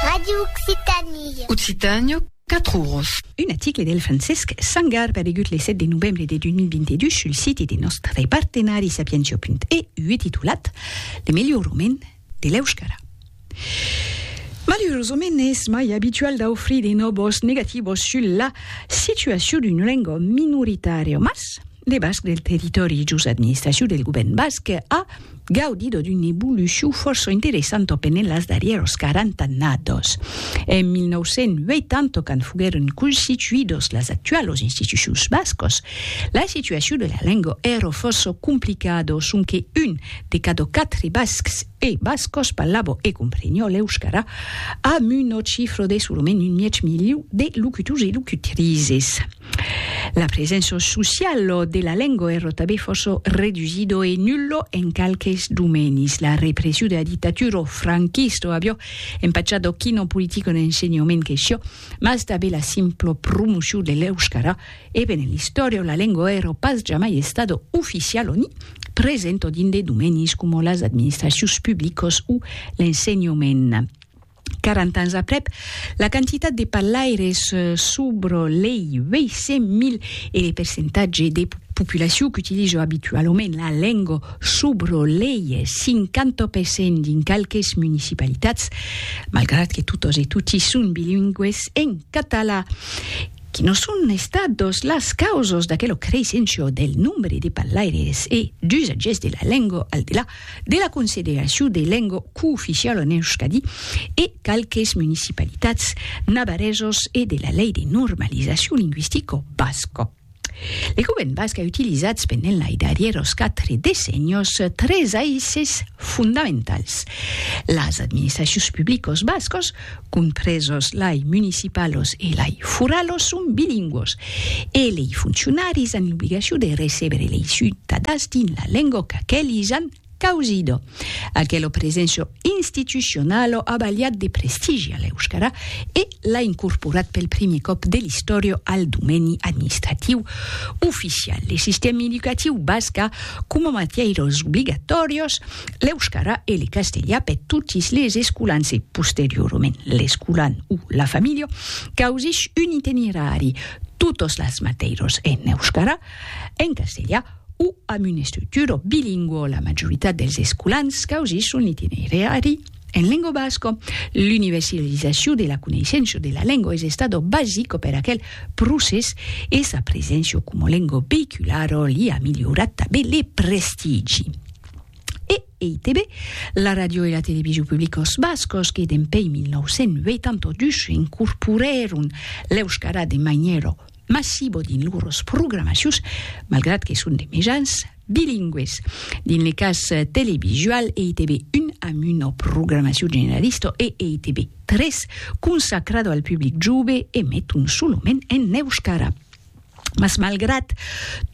Radio Occitanie. Occitània, 4 oros. Un article del Francesc Sangar paregut le 7 de novembre de 2022 sul siti de nòstre partenari sapientia.eu titulat Le melhor moment de l'euskara. Malurosament es mai abitual d'aufrir de nòbos negativos sul la situacion d'una lenga minoritària, mas Le basc del territòri jos administracion del govèrn basc a gaudido d'una evolucion fòrça interessanta au penent las darrièros 40 annados. En 1980, quand foguèron constituidos las actualos institucions bascos, la situacion de la lenga èra fòrça complicada, sonque un de cada quatre bascs e bascas parlava e compreniá l'euscara, amb una chifra de solament un mièg miliu de locutors e locutrizes. La presença sociala de la lenga èra tanben fòrça redusida e nulla en qualques domènis. La repression de la dictatura franquista aviá empachat a quina politica d'ensenhament que siá, mas tanben la simpla promocion de l'euscara, e ben en l'istòria la lenga èra pas jamai estada oficiala ni presenta dins de domènis coma las administracions publicas o l'ensenhament. 40 ans aprèp, la quantitat de parlaires sobre lei 800.000 e le percentatge de populacion qu'utilisa abitualament la lenga sobre lei 50% dins qualques municipalitats, malgrat que totas e toti son bilingües en catalan, que non son estadas las causas d'aquela creisséncia del nombre de parlaires e d'usatgers de la lenga al delà de la consideracion de lenga cooficiala en Euskadi e qualques municipalitats navarresos e de la lei de normalizacion lingüistica basca. Le govern basc a utilizats pendent lai darrieros quatre decennios tres aisses fondamentals. Las administracions publicas bascas compresos lei municipalos e lei furalos, son bilingüos e lei foncionaris an l'obligacion de recebere lei ciutadans dins la lengo qu'aquelis an causido. Aquelo presenso institucionalo a balhat de prestigi a l'euskara e l'a incorporat pel primier còp de l'istòria al domeni administratiu oficial. Le sistèmi educatiu basc a coma matièiras obligatòrios l'euskara e le castelha per totis les escolans e posteriorament l'escolan o la familha causich un itinerari totos las mateiros en euskara, en castelha o amb una estructura bilingua la majoritat dels escolans causich son itinerari en lengua basca. L'universalizacion de la coneissença de la lengua es estada basica per aquel procès e sa preséncia coma lengua veïculara li a milhorat tanben le prestigi. e EITB, la ràdio e la television publicos bascos que dempei 1982 incorporèron l'euskara de manièra massiva dins lors programacions, malgrat que son de mejans bilingües. Dins le cas televisual, EITB 1 amb una programacion generalista e EITB 3 consacrada al public jove emeton solament en euskara. Mas malgrat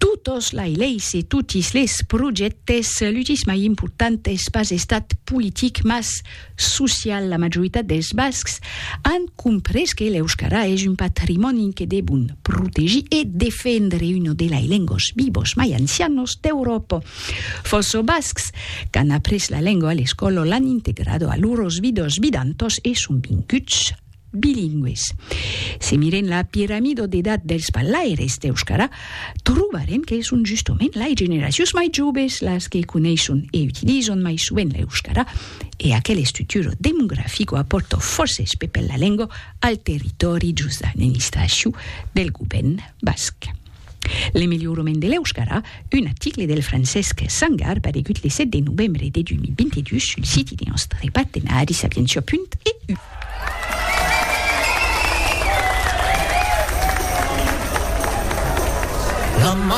totos lai leis e totis les projèctes, l'utís mai important es pas estat politic mas social. La majoritat dels bascs an comprés que l'euskara es un patrimòni que devon protegir e defendre, una de lai lengos vivos mai ancianos d'Euròpa. Fòrça bascs qu'an après la lenga a l'escòla l'an integrada a loros vidas vidantas e son vinguts. bilingües. Se mirem la piramida d'edat dels parlaires d'euscara, trobarem que son justament lai generacions mai joves las que coneisson e utilizan mai sovent l'euscara, e aquel estructura demografica apòrta fòrces pepèl la lengua al territòri jos l'administracion del govèrn basc. L'emeliorament de l'euskara, un article del Francesc Sangar paregut le 7 de novembre de 2022 sul siti de nòstre partenari sapientia.eu.